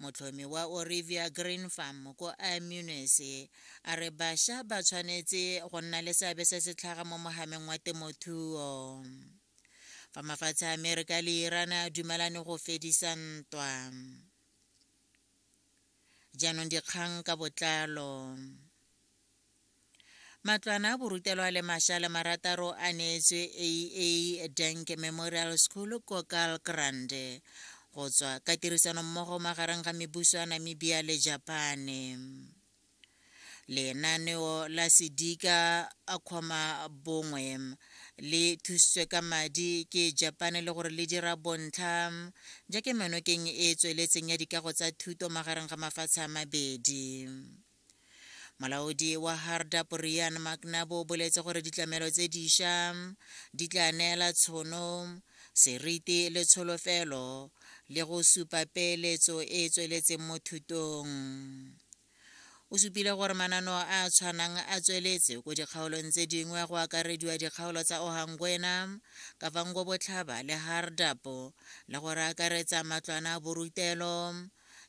motlhomi wa orivia green farm ko amunes a re bašwa ba tshwanetse go nna le seabe se se tlhaga mo mogameng wa temothuo fa mafatshe a amerika le iran a dumelane go fedisa ntwa jaanong dikgang ka botlalo Matlwana borutelwa le masha le marataro a neetswe AA Dank Memorial School ko Kalkrand go tswa ka tirisano mmogo magareng ga mebuso ya Namibia le Japane. Lenaneo la Sedika a kgoma bongwe le thusitswe ka madi ke Japane le gore le dira bontlha ja kemenokeng e e tsweletseng ya dikago tsa thuto magareng ga mafatshe a mabedi. molaodi wa hardap rian macnabo o boletse gore ditlamelo tse diša di tla neela tshono seriti le tsholofelo le go supa peeletso e e tsweletseng mo thutong o supile gore manano a a tshwanang a tsweletse ko dikgaolong tse dingwe go akarediwa dikgaolo tsa ohangwena kavango botlhaba le hardapo le gore akaretsa matlwana a borutelo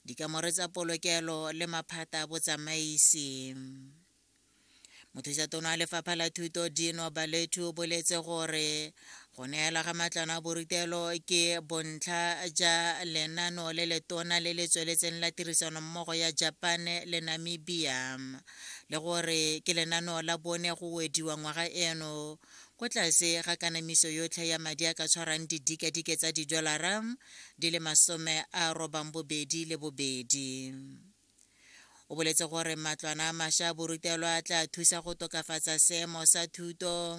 dikamore tsa polokelo le maphata a botsamaisi mothusa tono a lefapha la thuto dino balethu o boletse gore go neela ga matlwana a borutelo ke bontlha ja lenano le letona le le tsweletseng la tirisano mmogo ya japan le namibia le gore ke lenano la bone go wediwa ngwaga eno ko tlase ga kanamiso yotlhe ya madi a ka tshwarang didikadike tsa didolara di le masome a robang bobedi le bobedi o boletse gore matlwana a masha borutelwa a tla thusa go tokafatsa seemo sa thuto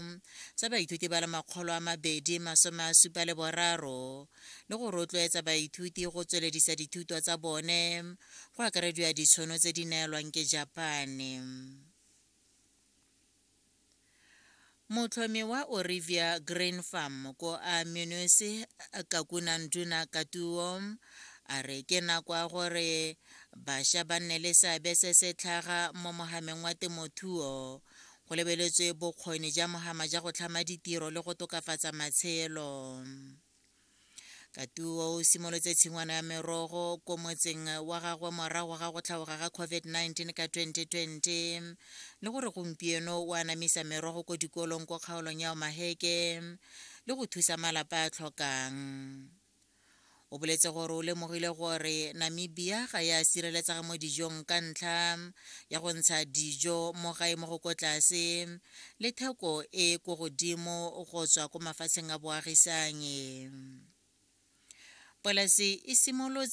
sa baithuti ba le makgolo a mabedi masome a supa le boraro le go rotloetsa baithuti go tsweledisa dithuto tsa bone go akarediwa ditshono tse di neelwang ke japane motlhomi wa orivia grain farm ko a munisi kakunanduna katuo a re ke nako ya gore bašwa ba nne le seabe se se tlhaga mo mogameng wa temothuo go lebeletswe bokgoni ja mogama ja go tlhama ditiro le go tokafatsa matshelo katuo o simolotse tshingwana ya merogo ko motseng wa gagwe morago ga go tlhaoga ga covid-19 ka 2020 le gore gompieno o anamisa merogo ko dikolong ko kgaolong ya omaheke le go thusa malapa a tlhokang o boletse gore o lemogile gore namibia ga ya sireletsega mo dijong ka ntlha ya go ntsha dijo mo gae mo go ko tlase le theko e e ko godimo go tswa ko mafatsheng a boagisanyi. Polasi e simolotse